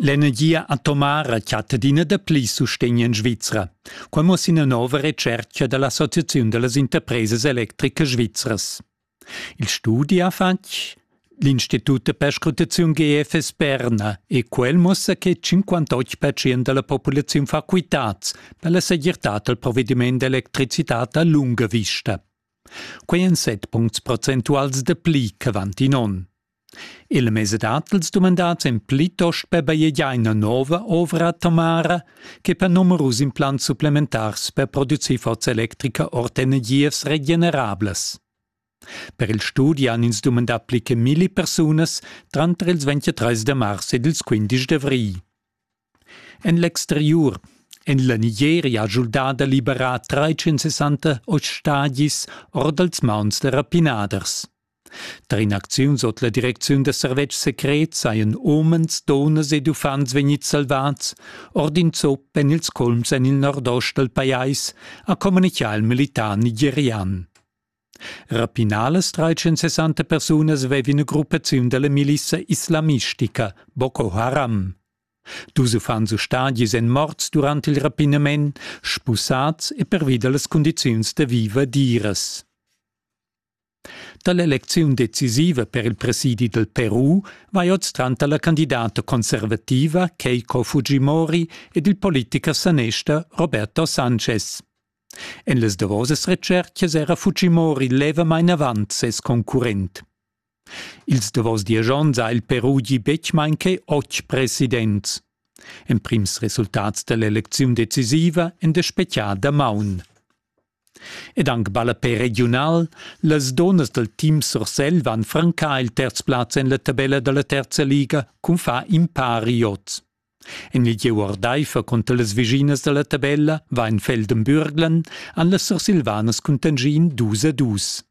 L'energia atomara chatta adina dapli sustegn en Svizra. Quai muossa ina nova retschertga da l'Associaziun da las interpresas electricas svizras. Il studi ha fatg l'Institut de Perscrutaziun GFS Berna e quel muossa che 58% da la populaziun fa quitads per la segirtad dal provediment d'electricitad a lunga vista. Quai èn 7 puncts procentuals da pli ch'avant in onn. Il mez dat els dumandats èn plitost per bajegiar ina nova ovra atomara che per numerus implants supplementars per producir forza electrica ord energias regenerablas. Per il studi han ins dumandà pli che milli persunas tranter ils 23 de mars ed ils 15 d'avrigl. En l'exteriur en la Nigeria ha schuldà da liberar trais-sessanta ostagis or dals mauns da rapinaders. Tar in'acziun sut la direcziun da servetschs secrets sajan umens, dunnas ed uffants vegnids salvads ord in zup en ils culms en il nordost dal pajais, ha communitgà il militar nigerian. Rapinalas 360 persunas vevin gruppaziun dalla milissa islamistica Boko Haram. Dus uffants ustadis èn morts durant il rapinament, spusads e pervi da las cundiziuns da viver diras. Dall'elecziun decisiva per il presidi del Peru vai oz tranter la candidata conservativa Keiko Fujimori ed il politicher sanester Roberto Sanchez. En las davosas retschertgas era Fujimori levamain avant ses concurrent. Ils davos diesch onns ha il Peru gì betg main che otg presidents. Emprims resultats da l'elecziun decisiva èn da spetgar damaun. Ed anc ballapè regiunal, las donas dal team Sursel van francar il terz plaz en la tabella da la terza liga cun far in pari oz. En il gieu ordaifer cunter las vischinas da la tabella va en Feldenbürglen han las Sursilvanas cuntanschì in dus a dus.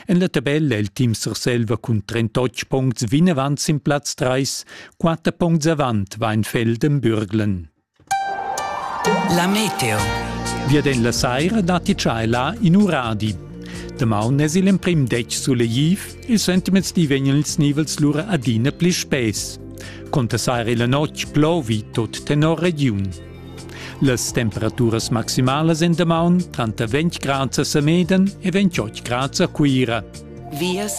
En la tabella è il team Surselva cun 38 puncts vinavant sin plaz 3, 4 puncts avant va en Feldenbürglen. La meteo. Vieden la saira datti là in uradi. Damaun es il emprim detg sulegliv, il sentiments di vegnan ils nivels lura adina pli spess. Contessar il notg plovi tot tenor regiun. Las temperaturas maximalas en damaun tranter 20 grads a Semeden e 28 grads a Cuira. Vias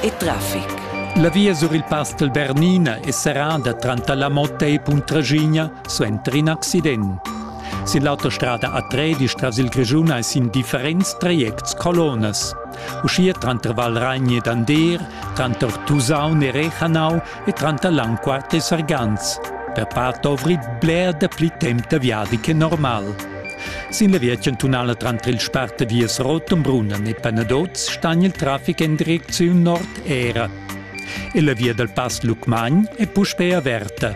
e traffic. La via sur il Pastel Bernina è serrada tranter la Motta e Puntraschigna suenter in accident. Sin l'autostrada A13 tras il Grischun è sin differents trajects colonas. uschia tranter Valragn ed Andeer, tranter Tusaun e Rechanau e tranter Langquart e Sargans. Per part dovri bler dapli temp da viadi che normal. Sin la via chantunala tranter il Sparte viers Rotenbrunnen e Penadoz stan il traffic en direcziun nord era. E la via dal Pass Lucmagn è puspè averta.